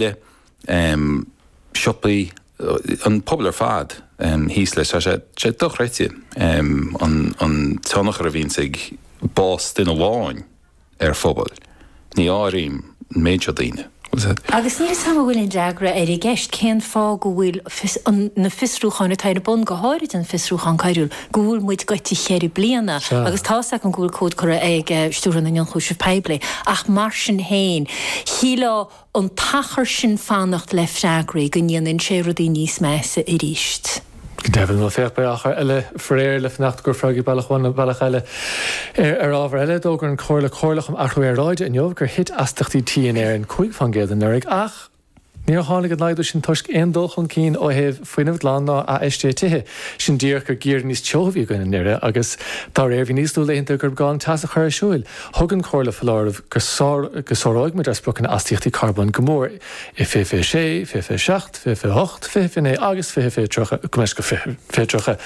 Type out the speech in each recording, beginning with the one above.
le siopaí, an pobal ar fad thíos leis. Tá sé dochreidte an tionchar a bhíonns ag bás duine amháin ar phobal, ní áirím an méid seo daoine. Agus níl fhios 'am an bhfuil aon fhreagra air i gceist, cén fáth go bhfuil na fiosrúcháin atá ar bun, go háirid an fiosrúchán coiriúil, go bhfuil muid gaibhte cheithre bliana agus tá's agam go bhfuil comhad curtha chuig Stiúrthóir na nIonchúiseamh Poiblí ach mar sin féin, shílfeá, an t-achar sin fanacht le freagraí go ndéanann sé rudaí níos measa arís. Go deimhin, Maitiú féach, beidh achar eile faraor le fanacht ar fhreagraí bealach amháin nó bealach eile ar ábhar eile. D'fhógair an Chomhairle Comhairleach um Athrú Aeráide inniu gur thit astaíochtaí tí in Éirinn cúig fán gcéad anuraidh ach níor tháinig an laghdú sin toisc aon dul chun cinn ó thaobh fuinneamh glan ná athfheistiú tithe. Is é díreach gur geimhreadh níos teo a bhí againn anuraidh agus dá réir bhí níos lú laethanta gurb gá an teas a chur ar siúil. Thug an Chomhairle foláireamh go sáróimid ár spriocanna astaíochtaí carbóin go mór i fiche fiche 6, fiche fiche 7, fiche fiche 8, fiche fiche 9 agus fiche, go fiche 30,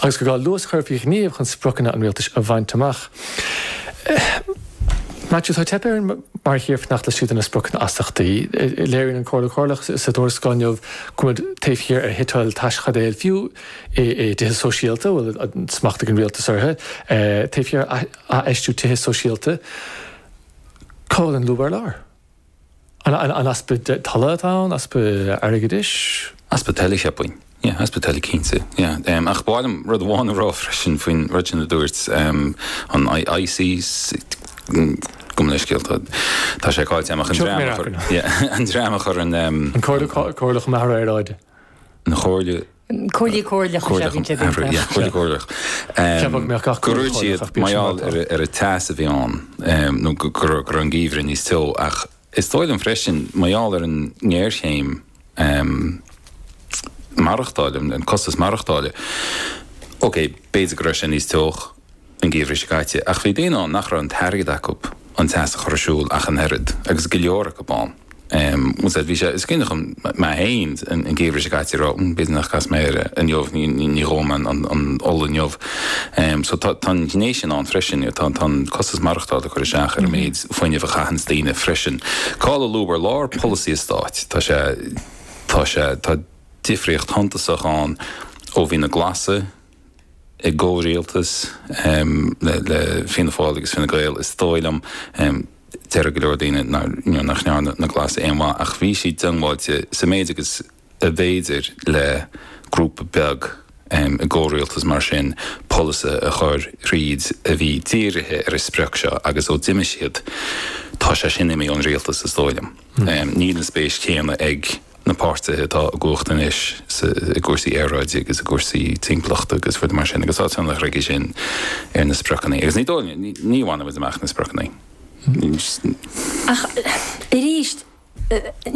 agus gur gá luas a chur faoi ghníomh chun spriocanna an rialtais a bhaint amach. Maitiú, Tá teipthe orainn mar thír fanacht laistigh de na spriocanna astaíochtaí. Léiríonn an Chomhairle Chomhairleach sa tuarascáil inniu go bhfuil muid taobh thiar ar shuiteáil teaschaidéil fiú i dtithe sóisialta a bhfuil smacht ag an rialtas orthu, taobh thiar ar. Athfheistiú tithe sóisialta, cá bhfuil an lúb ar lár? An easpa tola atá ann, easpa airgeadais? Easpa tola, cheapfainn. Yeah, easpa tola cinnte. Yeah. Ach ba mhaith liom rud amháin a rá freisin faoin rud sin a dúirt an ISIS. Gabh mo leithscéal, tá sé cáillte amach, an dream a chuir an. An Chomhairle Chomhairleach um Athrú Aeráide. An Chomhairle. Comhairle chomhairleach is ea bhíonn siad ag an teach. Comhairle chomhairleach. Cheapfadh mé gach comhairle comhairleach bíonn siad mar atá. Mar gheall ar an teas a bhí ann nó go raibh an geimhreadh níos teo ach is dóigh liom freisin mar gheall ar an ngéarchéim maireachtála, an costas maireachtála, ok b'fhéidir go raibh sé níos teo. an geimhreadh seo caite, ach bhí daoine ann nach raibh an t-airgead acu an teas a chur ar siúl ach an oiread, agus go leor acu ann, bhuel sea, bhí sé, is cinnte chun, mé féin an geimhreadh seo caite, raibh, b'fhéidir nach gcasfaidh mé air inniu, ní dhófaidh mé an ola inniu, so tá an ghné sin ann freisin, tá an costas maireachtála ag cur isteach ar an méid fuinnimh a chaitheanns daoine freisin. Cá'il an lúb ar lár polasaí an stáit, tá sé, tá sé, tá difríocht shuntasach ann ó bhí na Glasaigh, i gcomhrialtas le Fianna Fáil agus Fine Gael, is dóigh liom. Déarfadh go leor daoine nach ndearna na Glasaigh aon mhaith, ach bhí siad diongbháilte sa méid agus ab fhéidir le grúpa beag i gcomhrialtas mar sin polasaithe a chur thríd a bhí dírithe ar an sprioc seo agus ó d'imigh siad, tá sé sin imithe ón rialtas is dóigh liom. Níl an spéis chéanna ag. na páirtithe atá i gcumhacht anois i gcúrsaí aeráide agus i gcúrsaí timpeallachta agus rudaí mar sin, agus tá tionchar aige sin ar na spriocanna, agus ní dóigh liom, ní bhainfidh muid amach na spriocanna. Ach arís,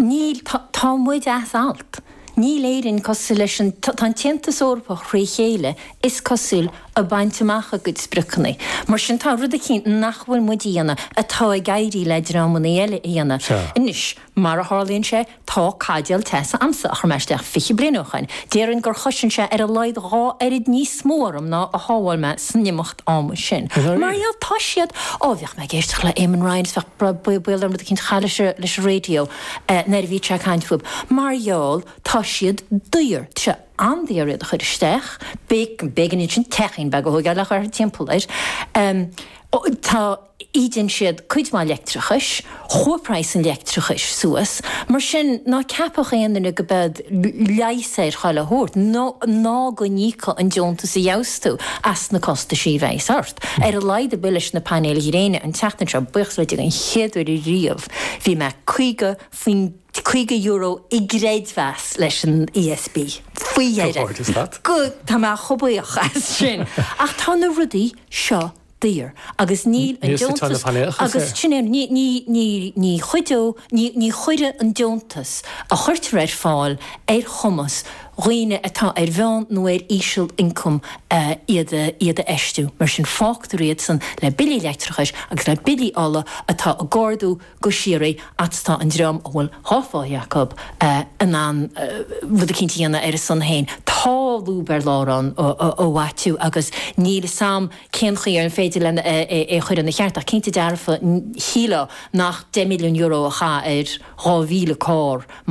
níl, tá muid as alt, níl, Éirinn cosúil leis an, tá an tAontas Eorpach fré chéile, is cosúil, ag baint amach a gcuid spriocanna, mar sin tá rud eicínt nach bhfuil muid a dhéanamh atá ag éirí le dreamanna eile a dhéanamh. Anois. Mar a tharlaíonn sé, tá caidéal teasa a'msa a chuir mé isteach fiche bliain ó shoin, déarfainn gur chosain sé ar a laghad dhá oiread níos mó orm ná a shábháil mé san imeacht ama sin. Mar gheall, tá siad, ó, bhíodh mé ag éisteacht le Eamon Ryan is bhíodh brod baol orm rud eicínt a chaith leis a, leis a radio nuair a bhíodh sé ag caint fúb, mar gheall, tá siad daor, tá sé an-daor iad a chuir isteach, b'éigean, b'éigean ansin teachín beag a thóigeáil a chur thimpeall air, tá. ídeann siad cuid mhaith leictreachais, chuaigh praghas an leictreachais suas, mar sin ná ceapadh aon duine go mbeidh leigheas ar chuile thaobh ort, ná go n-íocfadh an deontas a gheibheas tú as na costaisí a bheas ort. Ar a laghad a bhuí leis na painéil gréine an tseachtain seo, buíochas le Dia, an chéad uair ariamh bhí mé caoga faoin, caoga euro i gcreidmheas leis an ESB, faoi dheireadh, tá mé chomh buíoch as sin, ach tá na rudaí seo daor agus níl an deontas agus sin é ní ní ní ní chuideodh ní ní chuirfidh an deontas a chuirtear ar fáil ar chumas dhaoine atá ar mheán nó ar íseal ioncam iad iad a fheistiú mar sin fágtar iad san le billí leictreachais agus le billí ola atá ag ardú go síoraí a's tá an dream a bhfuil an mhaoin acu in ann rud eicínt a dhéanamh ar a son fhéin, tá lúb ar lár ann a Mhaitiú agus níl 'fhios a'm cén chaoi ar féidir leo é a chur ina cheart ach cinnte dearfa shílfeá nach deich milliún euro a chaith ar dhá mhíle carr